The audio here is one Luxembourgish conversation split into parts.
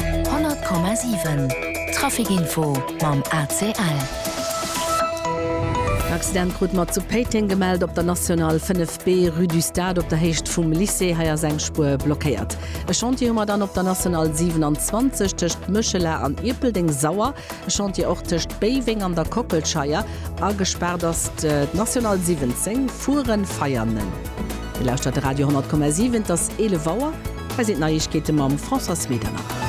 100,7 Traficinfo mam ACL. En Accident krut mer zu Péiteng gemellt op der National 5 B, Rue du Stade op der Héicht vum Lycée. Hei ass eng Spuer blockéiert. E Chantier hu mer dann op der National 27 tëscht Méchela an Ierpeldeng. Sauer e Chantier och tëscht Béiweng an der Kockelscheier. A gespaart ass d'National 17, Furen-Veianen. Dir lauschtert de Radio 100,7, et ass 11 Auer. Hei sinn d'Neiegkeete mam Françoise Medernach.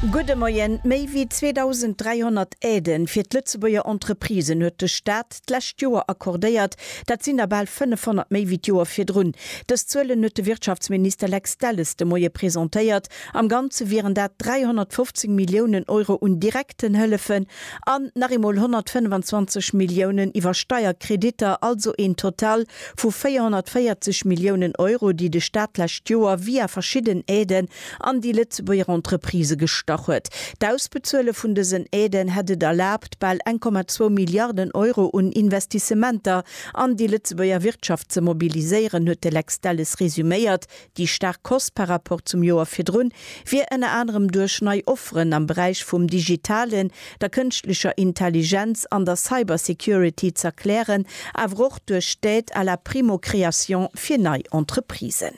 Gudde Moien. Méi wéi 2.300 Aiden fir d'Lëtzebuerger Entreprisen huet de Staat d'lescht Joer accordéiert. Dat sinn der bal 500 méi wéi d'Joer virdrun. Dës Zuelen huet de Wirtschaftsminister Lex Delles de Moie presentéiert. Am Ganze wieren dat 315 Milliounen Euro un direkten Hëllefen an nach eemol 125 Milliounen iwwer Steierkreditter, also een Total Vu 440 Milliounen Euro, déi de Staat d'lescht Joer via verschidden Aiden an déi Lëtzebuerger Entreprisë gestach huet. D'Ausbezuele vun dësen Aiden hätt et erlaabt, bal 1,2 Milliarden Euro un Investissementer an déi Lëtzebuerger Wirtschaft ze mobiliséieren, huet de Lex Delles resuméiert. Déi staark Kost par rapport zum Joer virdrun wier ënner anerem duerch nei Offeren am Beräich vum Digitalen, der Kënschtlecher Intelligenz an der Cybersecurity z'erklären, awer och duerch d'Aide à la primo-création fir nei Entreprisen.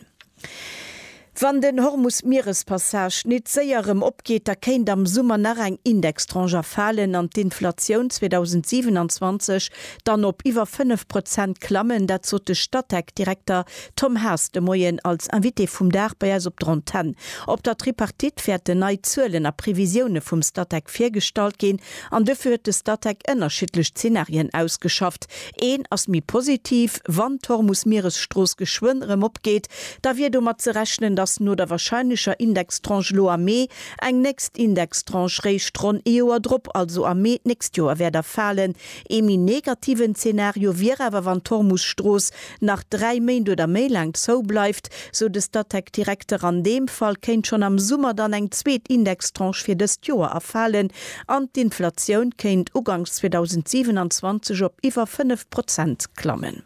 Wann den Hormus-Mierespassage nit séier erëm opgeet, da kéint am Summer nach eng Indextranche erfalen an d'Inflatioun 2027 dann op iwwer 5 Prozent klammen, dat sot de Statec-Direkter Tom Haas de Moien als Invité vum Dag bei eis op der Antenn. Op der Tripartite wäerten nei Zuelen a Previsioune vum Statec virgestallt ginn an dofir huet de Statec ënnerschiddlech Zenarien ausgeschafft. Een ass méi positiv, Wann d'Hormus-Mieresstrooss geschwënn erëm opgeet, da wier domat ze rechnen, datt no der warscheinlecher Indextranche elo am Mee eng nächst Indextranche réischt ronn ee Joer drop, also am Mee d'nächst Joer wäert erfalen. Ee méi negativen Zenario wier awer, wann d'Hormus-Strooss nach dräi Méint oder méi laang zou bleift, sou de Statec-Direkter. An deem Fall kéint schonn am Summer dann eng zweet Indextranche fir dëst Joer erfalen an d'Inflatioun kéint uganks 2027 op iwwer fënnef Prozent klammen.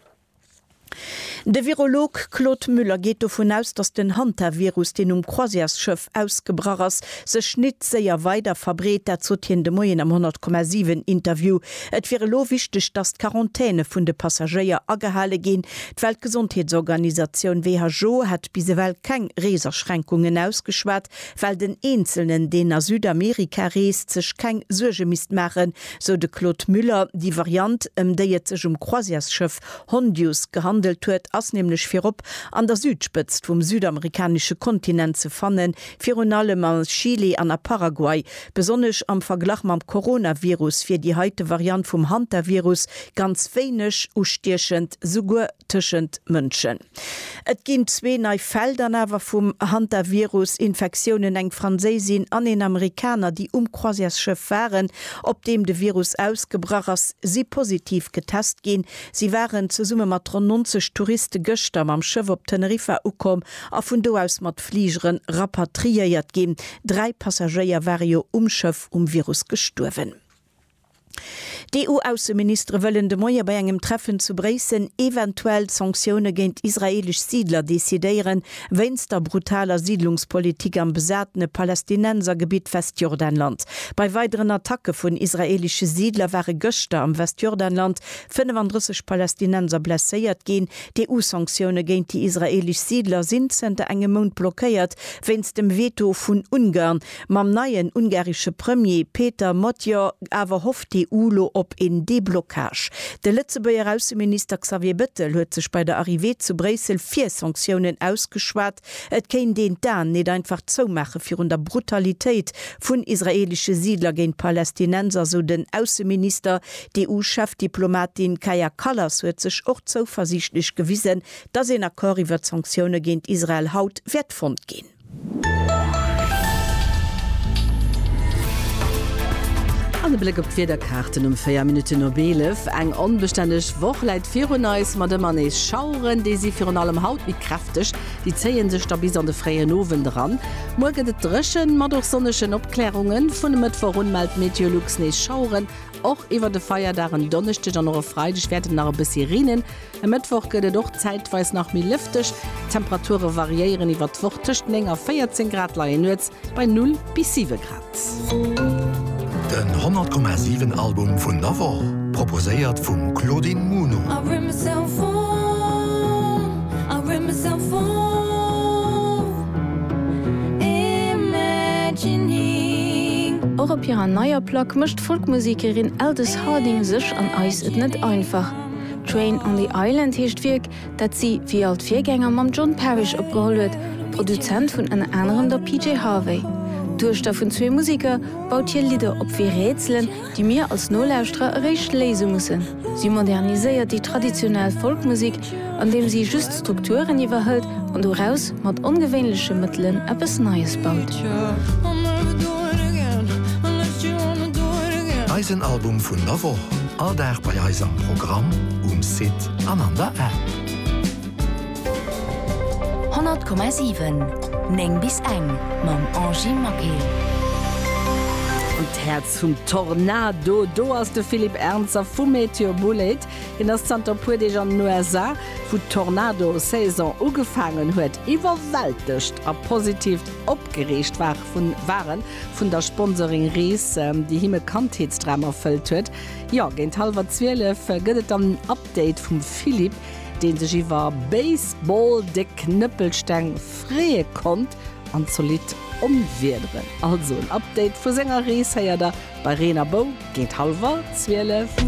De Virolog Claude Müller geet dovun aus, datt den Hantavirus, deen um Croisièresschëff ausgebrach ass, sech nit séier weider verbreet. Dat sot hien de Moien am 100,7 Interview. Et wier elo wichteg, datt d'Quarantäne vun de Passagéier agehale ginn. D'Weltgesondheetsorganisatioun, who, hätt bis ewell keng Reesaschränkungen ausgeschwat, well den Eenzelnen, deen a Südamerika reest, sech keng Suerge misst maachen, sou de Claude Müller. Déi Variant, ëm déi et sech um Croisièresschëff Hondius gehandelt huet, ass nämlech virop an der Südspëtzt vum südamerikanesche Kontinent ze fannen, Virun allem a Chile an a Paraguay, besonnesch am Verglach mam Coronavirus, wier déi heite Variant vum Hantavirus ganz wéineg ustiechend, souguer tëschent Mënschen. Et ginn zwee nei Fäll dann awer vum Hantavirus-Infektiounen, eng Franséisin an een Amerikaner, déi um Croisièresschëff waren, op deem de Virus ausgebrach ass, si positiv getest ginn. Si waren zesumme mat ronn 90 Touriste gëschter mam Schëff op Teneriffa ukomm a vun do aus mat Fligere rapatriéiert ginn. Dräi Passagéier ware jo um Schëff um Virus gestuerwen. D'EU-Ausseministere wëllen de Moie bei engem Treffen zu Bréissel eventuell Sanktioune géint israeelesch Siidler decidéieren, wéinst der brutaler Siidlungspolitik am besatene Palästinensergebitt Westjordanland. Bei weideren Attacke vun israeelesche Siidler ware gëschter am Westjordanland 35 Palästinenser blesséiert ginn, D'EU-Sanktioune géint déi israeelesch Siidler sinn zënter engem Mount blockéiert wéinst dem Veto vun Ungarn. Mam neien ungaresche Premier Péter Magyar awer hofft d'EU lo op een Deblockage. De Lëtzebuerger Ausseminister Xavier Bettel huet sech bei der Arrivée zu Bréissel fir Sanktiounen ausgeschwat. Et kéint een d'Aen nit einfach zoumaache virun der Brutalitéit vun israeelesche Siidler géint Palästinenser, sou den Ausseminister. D'EU-Chefdiplomatin Kaja Kallas huet sech och zouversiichtlech gewisen, datt een Accord iwwert Sanktioune géint Israel haut wäert fonnt ginn. An e Bléck op d'Wiederkaarten um 4 Minutten op 11. Eng onbestänneg Woch läit virun eis, mat ëmmer nees Schaueren. Déi si virun allem haut méi kräfteg. Déifdeg, déi zéie sech da bis an de fréien Owend eran. Muer gëtt et dréchen, mat och sonnegen Opklärungen. Vun e Mëttwoch un mellt Meteolux nees Schaueren. Och iwwer de Feierdag, en Donneschdeg an och e Freideg wäert et nach e bëssi reenen. E Mëttwoch gëtt et och zäitweis nach méi lëfteg. D'Temperature variéieren iwwer d'Woch, tëscht 9 a 14 Grad, leien nuets bei 0 bis 7 Grad. Den 100,7 Album vun der Woch, proposéiert vum Claudine Muno. Och op hirer neier Plack mécht d'Folkmusekerin Aldous Harding sech an eis et net einfach. Train on the Island heescht d'Wierk, dat si wéi all d'Virgänger mam John Parish opgeholl huet, Produzent vun ënner anerem der PJ Harvey. D'Duechter vun zwee Museker baut hir Lidder op wéi Rätselen, déi mir als Nolauschterer eréischt léise mussen. Si moderniséiert déi traditionell Folkmusek, andeem si just d'Strukturen iwwerhëlt an doraus mat ongewéinleche Mëttelen eppes Neies baut. Eisen Album vun der Woch, all Dag bei eis am Programm, um Site. an an der App. 100,7, 9 bis eng mam Angie Maquet. An d'Häerz vum Tornado, do ass de Philippe Ernzer vu MeteoBulleit. Hien ass zanter e puer Deeg an den USA, wou d'Tornado-Saison ugefaangen huet. Iwwerwältegt a positivt opgereegt war en vun der Sponsoring Ries, déi him e Kandheetsdram erfëllt huet. Jo, géint hallwer 12 gëtt et dann en Update vum Philippe, dee sech iwwer Baseball-déck Knëppelsteng freeë konnt an zolidd Onwiederen. Also en Update vu senger Rees héiert der bei Reen a Bou géint hallwer 12.